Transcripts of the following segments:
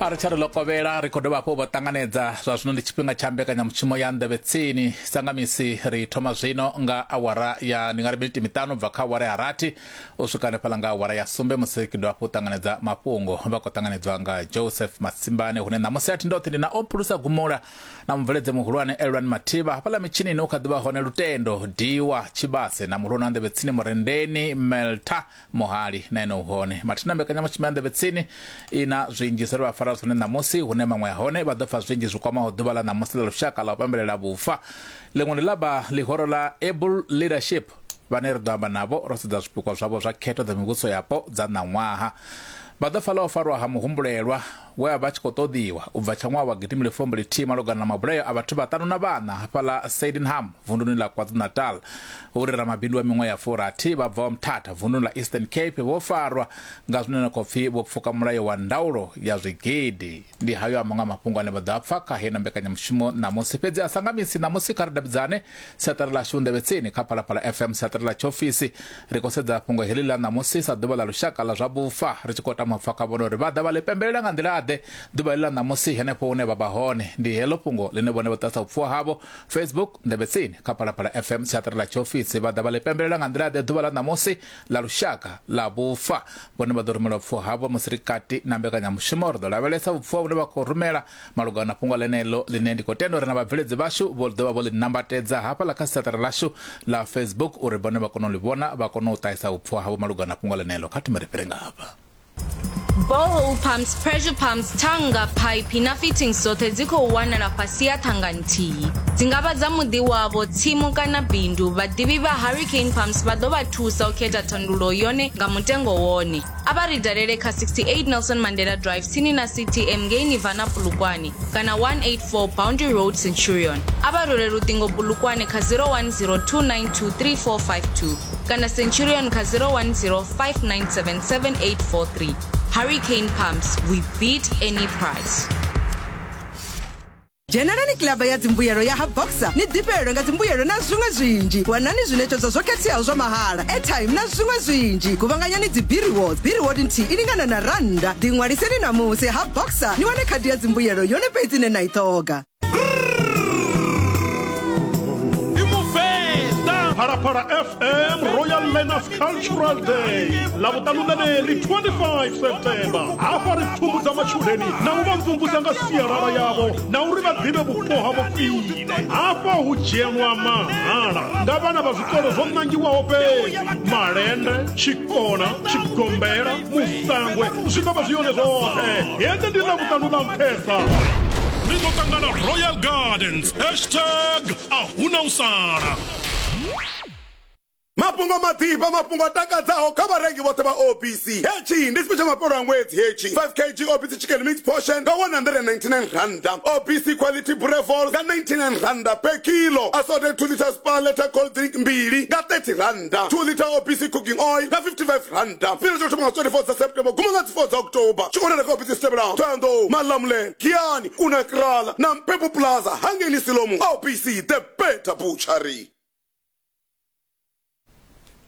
a ri tsha ri ḽo kovhela ri khou dovha hafhu vho ṱanganedza zwa zwino ndi tshifhinga tsha mbekanyamushumo ya nḓevhe tsini sa nga misi ri thoma zwino nga awara ya ndi nga ri miniti miṱanu bva kha awara ya rathi u swika hanefhaḽa nga awara ya sumbe musi ri dovha hafhu u ṱanganedza mafhungo vha khou ṱanganedzwa nga joseph masimbane hune ṋamusi a thi ndoṱhe ndi na o phulusa gumula na mubveledze muhulwane elwani mathivha hafhaḽa mitshinini u kha ḓi vha hone lutendo diwa tshivhase na muhulwane wa nḓevhe tsini murendeni melta muhali na ene u hone mathina mbekanyamushumo ya nḓevhe tsini i na zwinzhi zwe vha fara zwone ṋamusi hune maṅwe a hone vha ḓo fa zwinzhi zwi kwamaho ḓuvha ḽa ṋamusi ḽa lushaka ḽa u pambelela vhufa ḽiṅwe ndi ḽa vha ḽihoro ḽa able leadership vhane ri ḓo amba navho ro sedza zwipikwa zwavho zwa khetho dza mivhuso yapo dza ṋaṅwaha vha ḓo fa ḽa u farwa ha muhumbulelwa we a vha tshi khou ṱoḓiwa u bva tsha ṅwaha wa gidimile fumbu lithihi malugana na mabulayo a vhathu vhaṱanu na vhana hafhaḽa Sydenham vunduni ḽa KwaZulu-Natal uri ramabindu wa miṅwaha ya furathi vha bvaho Mthatha vunduni ḽa Eastern Cape vho farwa nga zwine na khou pfi vho pfuka mulayo wa ndaulo ya zwigidi. Ndi hayo a maṅwe a mafhungo ane vha ḓo a pfa kha heino mbekanyamushumo ṋamusi, fhedzi a sa nga misi ṋamusi kha ri davhidzane siaṱari ḽashu ndevhetsini kha phalaphala fm siaṱari ḽa tshiofisi ri khou sedza fhungo heḽi ḽa ṋamusi sa ḓuvha ḽa lushaka ḽa zwa vhufa ri tshi khou tama pfa kha vhone uri vha ḓa vha ḽi pembelela nga nḓila-ḓe ḓuvha heḽi ḽa ṋamusi henefho hune vha vha hone ndi heḽo fhungo ḽine vhone vha ṱasa upfhiwa havho facebook ndevhetsini kha phalaphala fm siaṱari ḽa tshiofisi vha ḓa vha ḽi pembelela nga nḓila-ḓe ḓuvha ḽa ṋamusi ḽa lushaka ḽa vhufa vhone vha ḓo rumela upfhiwa havho musi ri kati na mbekanyamushumo ri ḓo lavhelesa vhupfiwa vhune vha khou rumela malugana na fhungo ḽeneḽo ḽine ndi khou tenda uri na vhabveledzi vhashu vho ḓovha vho ḽi nambatedza hafhaḽa kha siaṱari ḽashu ḽa facebook uri vhone vha kone u ḽi vhona vha kone u ṱahisa vhupfhiwa havho malugana na fhungo ḽeneḽo kha thome ri fhire nga hafha Borehole pumps, pressure pumps, thanga, phaiphi na fittings dzoṱhe dzi khou wanala fhasi ha thanga nthihi. Dzi nga vha dza muḓi wavho, tsimu kana bindu. Vhaḓivhi vha Hurricane Pumps vha ḓo vha thusa u khetha thandululo yone nga mutengo wone. A vha ri dalele kha 68 Nelson Mandela Drive tsini na CTM ngei Nirvana Polokwane kana 184 Boundary Road Centurion. A vha rule luṱingo Polokwane kha 0102923452 kana Centurion kha 0105977843. Hurricane Pumps, we beat any price. dzhenelani kilaba ya dzimbuyelo ya ha boxer ni ḓifhelelwe nga dzimbuyelo na zwiṅwe zwinzhi wanani zwiṋetshedzo zwo khetheaho zwa mahala airtime na zwiṅwe zwinzhi guvhanganyani dzibiriwods biriwod nthihi i lingana na rannda ḓiṅwaliseni ṋamusi ha boxer ni wane khadi ya dzimbuyelo yone fhedzi ine na i ṱhoga Phalaphala FM Royal Learners cultural day ḽa vhuṱaluṋaneli 25 september hafha ri pfumbudza matshudeni na u vha mvumvusa nga sialala yavho na uri vha ḓivhe vhupo havho khwine hafha hu dzhenwa mahala nga vhana vha zwikolo zwo ṋangiwaho fhedzi malende tshikona tshigombela musangwe zwi ḓo vha zwi yone zwoṱhe hedzi ndi ḽa vhuṱanu ḽa nṱhesa ri ḓo ṱangana royal gardens hashtag a huna u sala Mafhungo maḓifha, mafhungo a takadzaho kha vharengi vhoṱhe vha OPC. Hetshi ndi tshifhe tsha mafhelo a ṅwedzi hetshi. 5 kg OPC Chicken Mix Portion nga R199, OPC Quality Brevol nga R99 per kilo, Assorted 2 litres Spar Letter Cold Drink mbili nga R30, 2 litre OPC Cooking Oil nga R55. Tshifhinga tsha u thoma nga 24 dza September u guma nga dzi 4 dza October. Tshi wanala kha ofisi dzi tevhelaho, Thohoyandou, Malamulele, Giyani, Kuna Kraal na Mpepu Plaza, Hangeni Siloam, OPC The Better Butchery.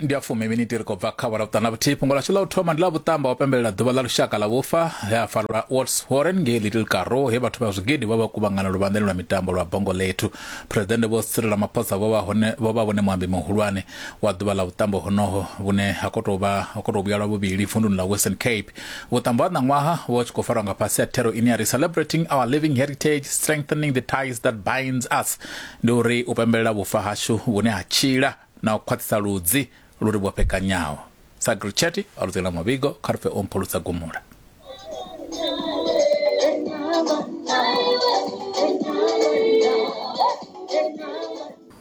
ndi a fumi miniti ri khou bva kha awara vhuṱana vhuthihi fhungo lashu ḽa u thoma ndi ḽa vhuṱamba wa pembelela ḓuvha ḽa lushaka ḽa vhufa he a farelwa wats warren ngei little caro he vhathu vha zwigidi vha vha kuvhangana luvhanḓeni lwa mitambo lwa bongo lethu phuresidennde vho sirela ramaphosa vho vha hone vho vha vhone muambi muhulwane wa ḓuvha ḽa vhuṱambo honoho vhune ha khou tou vha ha khou tou vhuyalwa vhuvhili vunduni ḽa western cape vhuṱambo ha ṋaṅwaha vho vha tshi khou farwa nga fhasi ha thero ine ya ri celebrating our living heritage strengthening the ties that binds us ndi uri u pembelela vhufa hashu vhune ha tshila na u khwaṱhisa ludzi lu ri vhofhekanyaho. Sa Gritchetti a ludzela muvhigo kha ri pfe o mphulutsa gumula.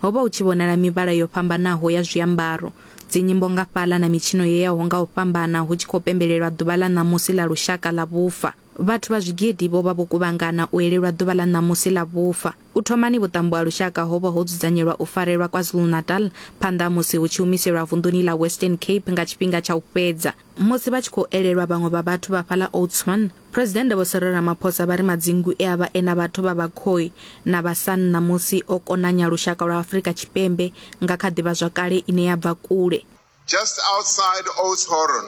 Ho vha hu tshi vhonala mivhala yo fhambanaho ya zwiambaro, dzinyimbo nga fhaḽa na mitshino yo yaho nga u fhambana hu tshi khou pembelelwa ḓuvha ḽa ṋamusi ḽa lushaka ḽa vhufa. Vhathu vha zwigidi vho vha vho kuvhangana u elelwa ḓuvha ḽa ṋamusi ḽa vhufa. U thomani vhuṱambo ha lushaka ho vha ho dzudzanyelwa u farelwa KwaZulu-Natal phanḓa ha musi hu tshi humiselwa vunḓuni ḽa Western Cape nga tshifhinga tsha u fhedza. Musi vha tshi khou elelwa vhaṅwe vha vhathu vha fhaḽa Oudtshoorn, Phresidennde Vho Cyril Ramaphosa vha ri madzingu e a vha e na vhathu vha Bakhoi na vha San ṋamusi o konanya lushaka lwa Afrika Tshipembe nga kha ḓivhazwakale ine ya bva kule. Just outside Oudtshoorn,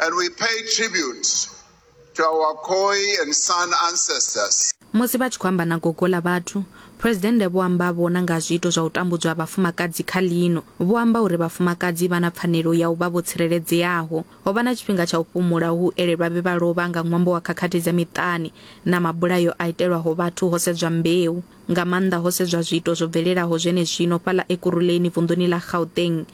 And we pay tribute to our Khoi and San ancestors. Musi vha tshi khou amba na gogo ḽa vhathu, Phresidennde vho amba vho na nga zwiito zwa u tambudzwa ha vhafumakadzi kha ḽino. Vho amba uri vhafumakadzi vha na pfanelo ya u vha vho tsireledzeaho. Ho vha na tshifhinga tsha u fhumula hu elelwa vhe vha lovha nga ṅwambo wa khakhathi dza miṱani na mabulayo a itelwaho vhathu ho sedzwa mbeu. Nga maanḓa ho sedzwa zwiito zwo bvelelaho zwenezwino fhaḽa Ekurhuleni vunḓuni ḽa Gauteng.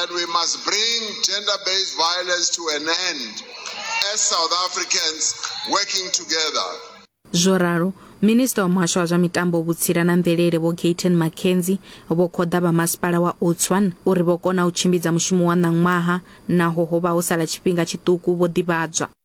And we must bring gender based violence to an end as South Africans working together. zwo ralo minista wa muhasho wa zwa mitambo vhutsila na mvelele vho gaten mackenzie vho khoḓa vha masipala wa otswan uri vho kona u tshimbidza mushumo wa ṋaṅwaha naho ho vha ho sala tshifhinga tshiṱuku vho ḓivhadzwa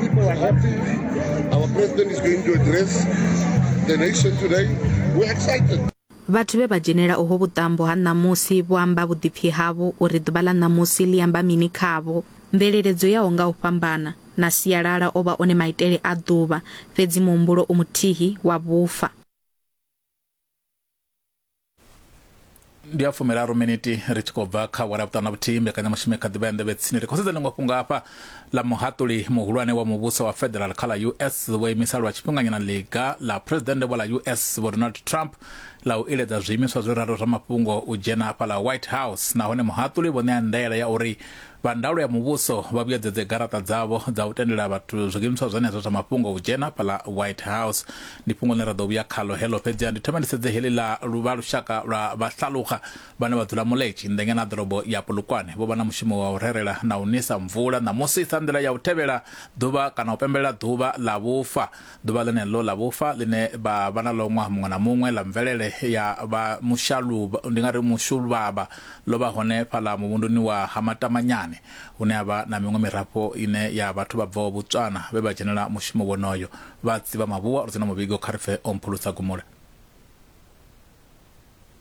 People are happy. Our president is going to address the nation today. We're excited. vhathu vhe vha dzhenela uho vhuṱambo ha ṋamusi vho amba vhuḓipfi havho uri ḓuvha ḽa ṋamusi ḽi amba mini khavho mvelele dzo yaho nga u fhambana na sialala o vha one maitele a ḓuvha fhedzi muhumbulo u muthihi wa vhufa ndi ya fumiraru miniti ri tshi khou bva kha wala vhuṱanu na vhuthihi mbekanyamushumo kha ḓivha ya nḓevhe tsini ri khou sedza ḽiṅwe fhungo hafha ḽa muhaṱuli muhulwane wa muvhuso wa federal kha ḽa us vho imisa lwa tshifhinganyana ḽiga ḽa phuresidennde vho ḽa us vho donald trump ḽa u iledza zwiimiswa zwi raro zwa mafhungo u dzhena hafha ḽa white house nahone muhaṱuli vho ṋea ndaela ya uri Vha ndaulo ya muvhuso vha vhuyedzedze garaṱa dzavho dza u tendela vhathu zwiimiswa zwenezwo zwa mafhungo u dzhena fhaḽa White House. Ndi fhungo ḽine ra ḓo vhuya khaḽo heḽo, fhedziha ndi thome ndi sedze heḽi ḽa luvha lushaka lwa Vhahlaluxa vhane vha dzula Moletši nnḓa ngeno ha ḓorobo ya Polokwane. Vho vha na mushumo wa u rerela na u nisa mvula ṋamusi sa nḓila ya u tevhela ḓuvha kana u pembelela ḓuvha ḽa vhufa. Ḓuvha ḽeneḽo ḽa vhufa ḽine vha vha na ḽo ṅwaha muṅwe na muṅwe ḽa mvelele ya vha mushaluvha, ndi nga ri mushuluvhavha, ḽo vha hone fhaḽa muvhunduni wa Ha Matamanyane, hune ha vha na miṅwe mirafho ine ya vhathu vha bvaho Botswana vhe vha dzhenela mushumo wonoyo. Vha tsivha mavhuwa, ro dzhena muvhigo kha ri pfe o mphulusa gumula.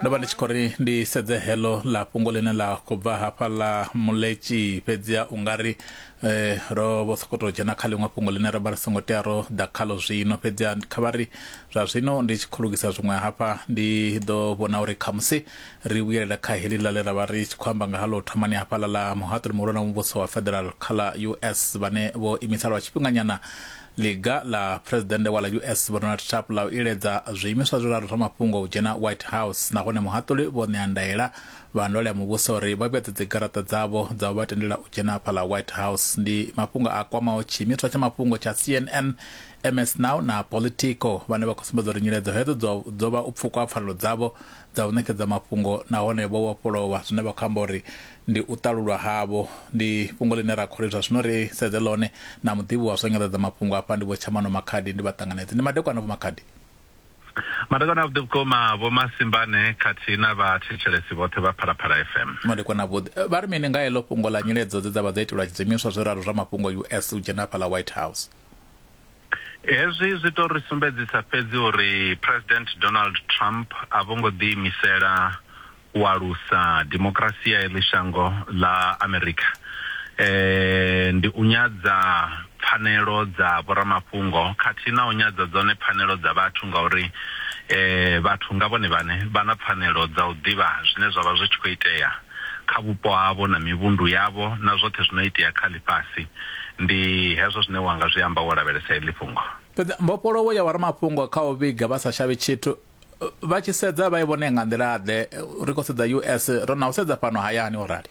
ndo vha ndi tshi khou ri ndi sedze heḽo ḽa fhungo ḽine ḽa khou bva hafha ḽa muletshi fhedzia u nga ri eh, ro vho sokou tou dzhena kha ḽiṅwe fhungo ḽine ro vha ri songo tea ro ḓa khalo zwino fhedzia kha vha ri zwa zwino ndi tshi khou lugisa zwiṅwe hafha ndi ḓo vhona uri khamusi ri vhuyelela kha heḽi ḽa ḽe ra vha ri tshi khou amba nga haḽo thomani hafhaḽa ḽa muhaṱuli muhulwane wa muvhuso wa federal kha ḽa us vhane vho imisa lwa tshifhinganyana Ḽiga ḽa Phresidennde wa ḽa US Vho Donald Trump ḽa u iledza zwiimiswa zwiraru zwa mafhungo u dzhena White House nahone muhaṱuli vho ṋea ndaela vha ndwale ya muvhuso uri vha vhuedze dzigaraṱa dzavho dza u vha tendela u dzhena afha ḽa White House. Ndi mafhungo a kwamaho tshiimiswa tsha mafhungo tsha CNN, MS Now na Politico vhane vha khou sumbedza uri nyiledzo hedzo dzo vha u pfukwa ha pfanelo dzavho dza u ṋekedza mafhungo nahone vho vhofhololwa zwine vha khou amba uri ndi u ṱalulwa havho. Ndi fhungo ḽine ra khou ri zwa zwino ri sedze ḽone na muḓivhi wa zwa nyanḓadzamafhungo afha ndi Vho Tshamano Makhadi ndi vha ṱanganedze. Ndi madekwana Vho Makhadi. Madekwana avhuḓi vhukuma Vho Masimbane khathihi na vha thetshelesi vhoṱhe vha Phalaphala FM. Madekwana avhuḓi. Vha ri mini nga heḽo fhungo ḽa nyiledzo dze dza vha dzo itelwa tshidzimiswa zwiraru zwa mafhungo US u dzhena hafhaḽa White House? Hezwi zwi tou ri sumbedzisa fhedzi uri Phresidennde Donald Trump a vho ngo ḓiimisela u alusa dimokirasi ya heḽi shango ḽa Amerika. Ndi u nyadza pfanelo dza vhoramafhungo khathihi na u nyadza dzone pfanelo dza vhathu ngauri vhathu nga vhone vhaṋe vha na pfanelo dza u ḓivha zwine zwa vha zwi tshi khou itea. kha vhupo havho na mivhundu yavho na zwoṱhe zwi no itea kha ḽifhasi. Ndi hezwo zwine wa nga zwi amba wo lavhelesa heḽi fhungo. Fhedzi mbofholowo ya vhoramafhungo kha u vhiga vha sa shavhi tshithu vha tshi sedza vha i vhone nga nḓila-ḓe? Ri khou sedza US, ro na u sedza fhano hayani, o rali.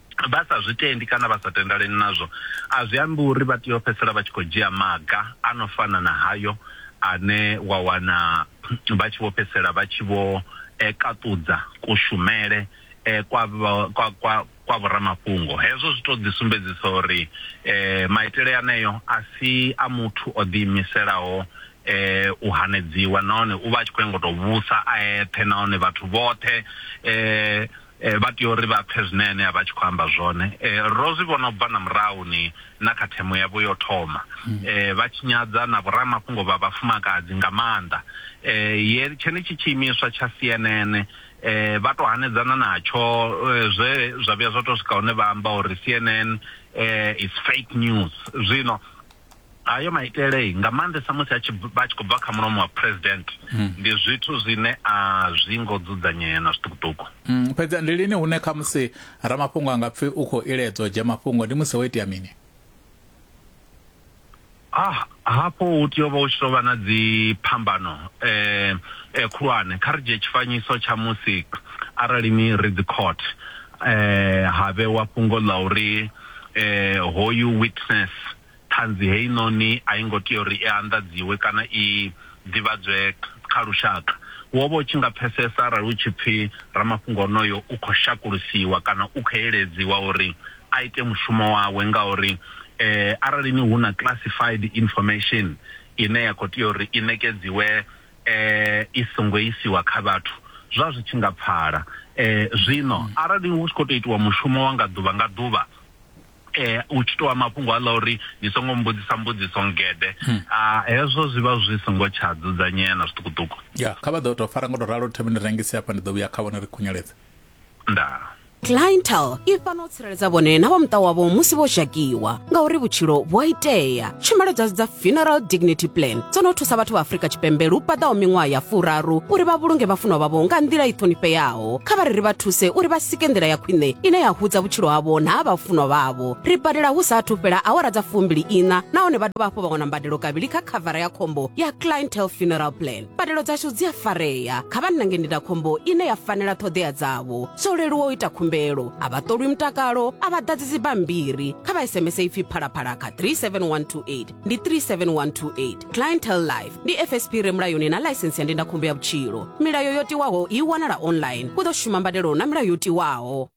vha sa zwi tendi kana vha sa tendaleni nazwo, a zwi ambi uri vha tea u fhedzisela vha tshi khou dzhia maga a no fana na hayo ane wa wana vha tshi vho fhedzisela vha tshi vho kaṱudza kushumele kwa kwa kwa kwa vhoramafhungo. Hezwo zwi tou ḓisumbedzisa uri maitele aneo a si a muthu o ḓiimiselaho u hanedziwa nahone u vha a tshi khou nyanga u tou vhusa a eṱhe nahone vhathu vhoṱhe Vha tea uri vha pfe zwine ene a vha a tshi khou amba zwone. Ro zwi vhona u bva na murahuni na kha themo yavho ya u thoma, vha tshinyadza na vhoramafhungo vha vhafumakadzi nga maanḓa. Ye tshenetshi tshiimiswa tsha CNN vha tou hanedzana natsho zwe zwa vhuya zwa tou swika hune vha amba uri CNN is fake news. Zwino. Hayo maitele, nga maanḓesa musi a tshi vha tshi khou bva kha mulomo wa President, ndi zwithu zwine a zwi ngo dzudzanyea na zwiṱukuṱuku. Fhedzi ndi lini hune khamusi ramafhungo a nga pfi u khou iledzwa u dzhia mafhungo? Ndi musi ho itea mini? Hafho hu tea u vha hu tshi tou vha na dziphambano khulwane. Kha ri dzhie tshifanyiso tsha musi arali ni ri dzi court, eh, ha vhewa fhungo ḽa uri eh, hoyu witness ṱhanzi heinoni a i ngo tea uri i anḓadziwe kana i ḓivhadzwe kha lushaka wo vha u tshi nga pfesesa arali u tshi pfhi ramafhungo onoyo u khou shakulusiwa kana u khou eledziwa uri a ite mushumo wawe ngauri eh, arali ni hu na classified information ine ya khou tea uri i nekedziwe e, i songo isiwa kha vhathu zwa zwi tshi nga pfala. E, zwino arali hu tshi khou tou itiwa mushumo wa nga ḓuvha nga ḓuvha eh u tshi toa mafhungo aḽa uri ni songo mbudzisa mbudziso ngede hmm. a hezwo zwi vha zwi songo tsha dzudzanyea na zwiṱukuṱuku ya kha vha ḓo tou fara ngo tou ralo thembe ni rengise hafha ndi ḓo vhuya kha vhone ri khunyeledze ndaa clientele i fana u tsireledza vhone na vha muṱa wavho musi vho zhakiwa ngauri vhutshilo vhu a itea tshumelo dzashu dza funeral dignity plan dzo no thusa vhathu vha afrika tshipembe lu paḓaho miṅwaha ya furaru uri vha vhulunge vhafunwa vhavho nga nḓila i ṱhonifheaho kha vha ri ri vha thuse uri vha sike nḓila ya khwine ine ya hudza vhutshilo havho na ha vhafunwa vhavho ri badela hu sa athu fhela awara dza fumbili ina nahone vha dovha hafhu vha wana mbadelo kavhili kha khavara ya khombo ya clientele funeral plan mbadelo dzashu dzi a farea kha vha nange ndindakhombo ine ya fanela ṱhoḓea dzavho zwo leluwa u ita khumbelo a vha ṱolwi mutakalo a vha ḓadzi dzibammbiri kha vha sms ipfi phalaphala kha 37128 ndi 37128 clientel life ndi fsp re mulayoni na ḽaisensi ya ndindakhombo ya vhutshilo milayo yo tiwaho i wanala online u ḓo shuma mbadelo na milayo yo tiwaho